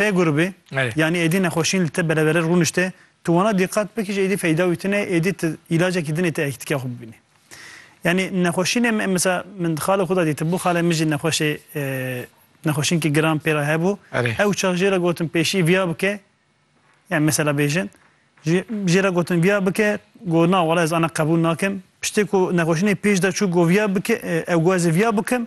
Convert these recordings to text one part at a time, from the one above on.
P grubê, yanî êdî nexweşîn li te bereverê rûnişte, tu wana dîqat bikî ji êdî feyda wî tune, êdî tu îlacekî dinê tu ekîtîka xwe bibînî. Yanî nexweşînê me mesela min di xalê xwe de dîtibû, xalê min jî nexweşê nexweşînkî giran pê re hebû, ew çax jê re gotin pêşî viya bike, yanî mesela bêjin, jê re gotin viya bike, got na wele ez ana qebûl nakim, piştê ku nexweşînê pêş de çû got viya bike, ew got ez ê viya bikim,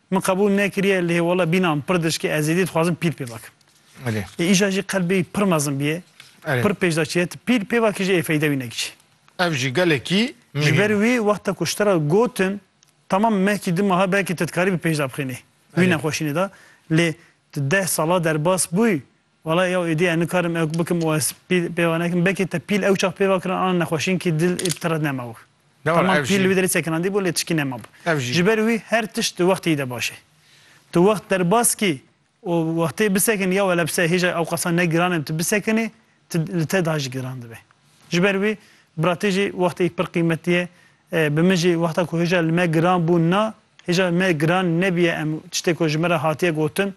Min qebûl nekiriye lê wala bîna min pir diçike ez êdî dixwazim pîl pê vekim. Lê îja jî qelbê pir mezin bîye, pir pêşda çiye tu pîl pê vekî jî ê feyde wî nekicî. Ev jî gelekî muhîm e. Ji ber wî wexta ku ji te re gotin temam mehkî du maha belkî tu dikarîbî pêşda bixînî wî nexweşînê de lê tu deh sala derbas bûyî Walayi ew êdî ez nikarim ew bikim û ez pîl pêva nekim. Belkî te pîl ew çax pêva kirin ana nexweşînkî dil ê tire nema wir. Temam pîl li wî derê sekinandî bû lê tişkî nema bû. Ji ber wî her tişt di wextê yî de baş e. Tu wext derbas kî û wextê bisekinî ya wele bi ser hêja ew qasa ne giran e bi tu bisekinî tu li te daha jî giran dibe. Ji ber wî bira te jî wextê pir qîmetî ye. Bi min jî wexta ku hêja li me giran bû na hêja me giran nebîye em tiştê ku ji min re hatiye gotin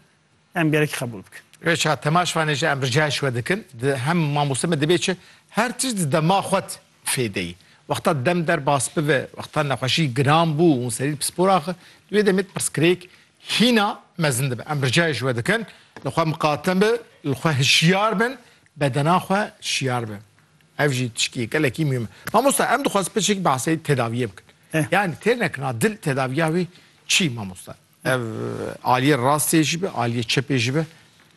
em gerek qebûl bikin. Rêça temaşvanê jî em ricayê ji we dikin, di hem mamoste me divê çi her tişt di dema xwe de fêdeyî. Wexta dem derbas bibe, wexta nexweşî giran bû û serî pispor axe, di wê demê pirsgirêk hîna mezin dibe. Em ricayê ji we dikin, li xwe miqate be, li xwe hişyar bin, bedena xwe şiyar be. Ev jî tiştî gelekî mûhim e. Mamoste em dixwazin pirsgirêk behsê tedawiyê bikin. Yani têr nekina dil tedaviya wê çi mamoste? Ev aliyê rastê jî be, aliyê çepê jî be,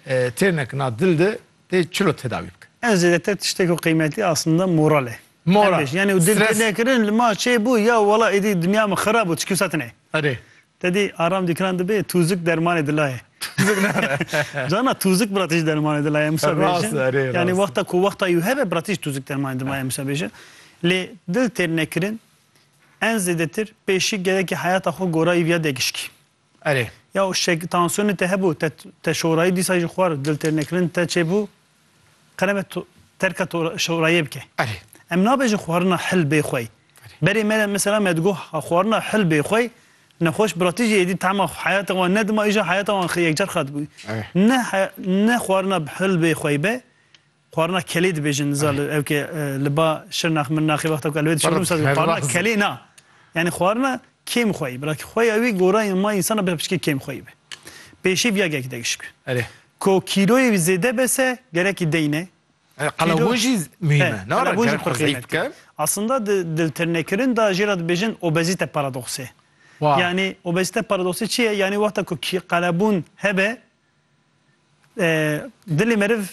têrnek na dil de tê çilo tedawî bike? Ev zêdetir tiştê ku qîmetî aslında moral e. Moral. Em bêjin. Yanî û dil Stres. tênekirin li ma çê bû ya wela êdî dinya min xirab bû ti kewsa tune. Erê. Te dî aram dîkiran dibê tûzik dermanê dila ye. Tûzik ne re. Cana tûzik bila te jî dermanê dila ye Mûsa Rast bêjin. e, erê, rast e. Yanî wexta ku wexta yû hebe bila te jî tûzik dermanê dima ye Mûsa bêjin. Lê dil têrnekirin En zêdetir pêşî gerekî heyata xwe gorayî viya degişkî. Erê. Ya û şek tansiyonê te hebû, te te şorayî dîsa jî xwar diltêrnekirin te çêbû, qerebe tu terka tu şorayê bike. Erê. Em nabêjin xwarina hil bê xwey. Berê me de mesela me digo xwarina hil bê xwey nexweş biratî jî êdî tema heyata wan nedima îja heyata wan yekcar xirab dibû. Ne ne xwarina hil bê xwey be Xwarina kelê dibêjin niza li ew ke li ba Şirnax Mirnaxê wexta ku elwê dişewin wisa dibin xwarina kelê na yanî xwarina kêm xweyî bila ki xweya wî gora yên ma însan a bê piçikê kêm xweyî be. Pêşî vîya gelekî degişt ku Erê. Ko kîloyê wî zêde bese gerekî deyne. Erê qelebûn jî muhîm e. Nara Qelebûn jî gerek xwe zeyf qîmetî ye. bike. Aslında di diltirnekirin da jê ra dibêjin obezîte paradoksê. Wa. Yanî obezîte paradoksê çi ye? Yanî wexta ku kî qelebûn hebe Dilê meriv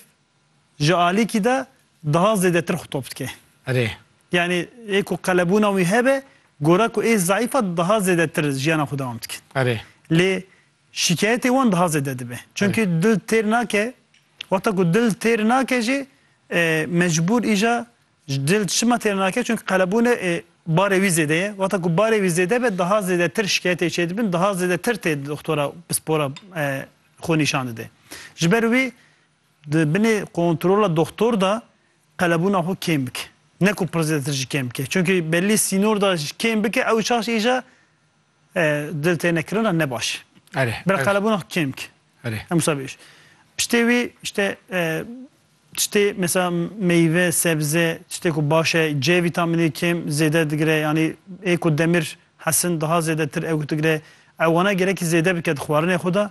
ji alîkî de daha zêdetir xwe top dike. Erê. Yanî ê ku qelebûna wî hebe, gora ku ê zayîf e daha zêdetir jiyana xwe dewam dikin. Erê. Lê şîkayetê wan daha zêde dibe. Çimkî dil têr nake, wexta ku dil têr nake jî mecbûr îja Ji dil çima têr nake çunke qelebûnê ê barê wî zêde ye. Wata ku barê wî zêde be daha zêdetir şikayetê çê dibin, daha zêdetir tê di doxtora pispora xwe nîşan dide. Ji ber wî di binê kontrola doxtor de qelebûna xwe kêm bike. Ne ku pir zêdetir jî kêm bike. Çunke bellî sînor de kêm bike ew çaş îja Dil têne kirina ne baş. Bila qelebûna kêm ki. Em wisa bêj. Piştê wî işte tiştê mesela meyve, sebze, tiştê ku baş e, C vîtamînê kêm zêde digire yanî ê ku demir hesin daha zêdetir ew digire. Ew wana gerekî zêde bike di xwarinê xwe de